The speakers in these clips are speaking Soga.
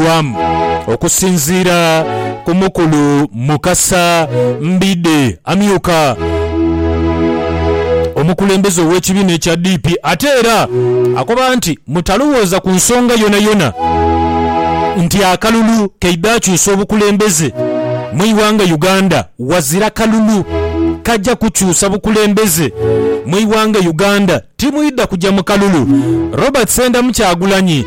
eyakolebwamu okusinziira ku mukulu Mukasa Mbidde amyuka omukulembeze ow'ekibiina ekya DP ate era akoba nti mutalowooza ku nsonga yonayona nti akalulu keidha akyusa obukulembeze mwighanga Uganda wazira kalulu kaja kukyusa bukulembeze mwighanga Uganda timwidha kuja mukalulu Robert Sendamu Kyagulanyi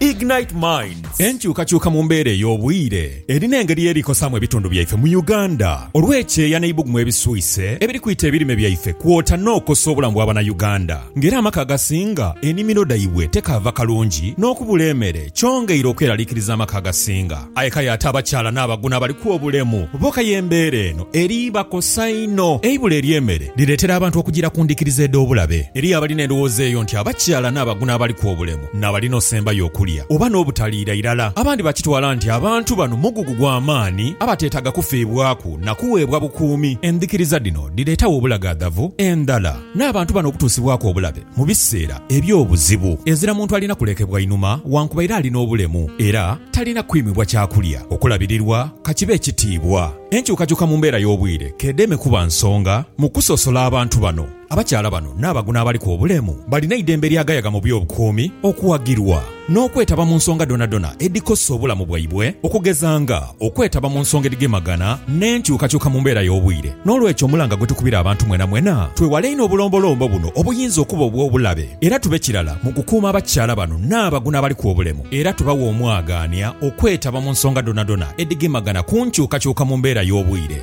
Ignite Minds. Enkyukakyuka mu mbeera ey'obwire erina engeri y'eri kosaamu ebitundu byaife mu Uganda olw'ekyeeya n'eibugumu ebiswise ebiri kwita ebirime byaife kwota n'okosa obulamu bwa Banauganda nga era amaka agasinga enimiro dhaibwe tekaava kalungi n'okubula emere kyongeire okweralikiriza amaka agasinga aye kale ate abakyala n'abaguno abaliku obulemu bo kaya embeera eno eri bakosa inho. Eibula ery'emere lireetera abantu okugira ku ndhikiriza edh'obulabe. Eriyo abalina endhowooza eyo nti abakyala n'abaguno abaliku obulemu. n'abali n'osembayo okulya oba n'obutaliira irala. Abandi bakitwala nti abantu bano mugugu gwa maani abateetaaga kufiibwaku na kuweebwa bukuumi. Endhikiriza dhino dhireetawo obulagaadhavu endhala n'abantu bano okutuusibwaku obulabe mu biseera eby'obuzibu. Ezira muntu alina kulekebwa inhuma wankubaire ali n'obulemu era talina kwimibwa kyakulya, okulabirirwa ka kibe ekitiibwa. Enkyukakyuka mu mbeera y'obwire k'edheeme kuba nsonga mu kusosola abantu bano. Abakyala bano n'abaguno abaliku obulemu balina eidembe eryagayaga mu by'obukuumi okuwagirwa n'okwetaba mu nsonga dhonadhona edhikosa obulamu bwaibwe okugeza nga okwetaba mu nsonga edhigemagana n'enkyukakyuka mu mbeera y'obwire. N'olwekyo omulanga gwe tukubira abantu mwenamwena twewale einho obulombolombo buno obuyinza okuba obw'obulabe era tube kirala mu kukuuma abakyala bano n'abaguno abaliku obulemu era tubawe omwagaanya okwetaba mu nsonga dhonadhona edhigemagana ku nkyukakyuka mu mbeera y'obwire.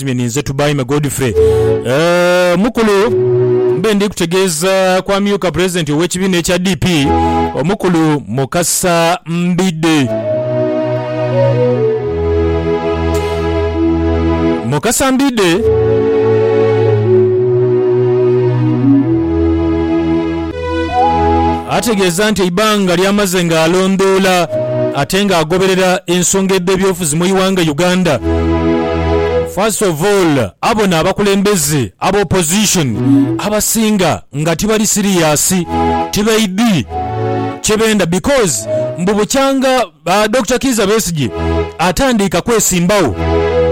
Nzimye ninze Tubaime Godfrey. Eeh mukulu mbe ndi kutegeeza ku amyuka pulezidenti ow'ekibiina ekya DP, omukulu Mukasa Mbidde. Mukasa Mbidde. Ategeeza nti eibanga ly'amaze ng'alondoola ate ng'agoberera ensonga edh'ebyobufuzi mu iwanga Uganda, first of all abona abakulembeze aba opposition abasinga nga tibali serious, tibaidhi kyebenda because mbu bukyanga Dokita Kiiza Besigye atandiika kwesimbagho,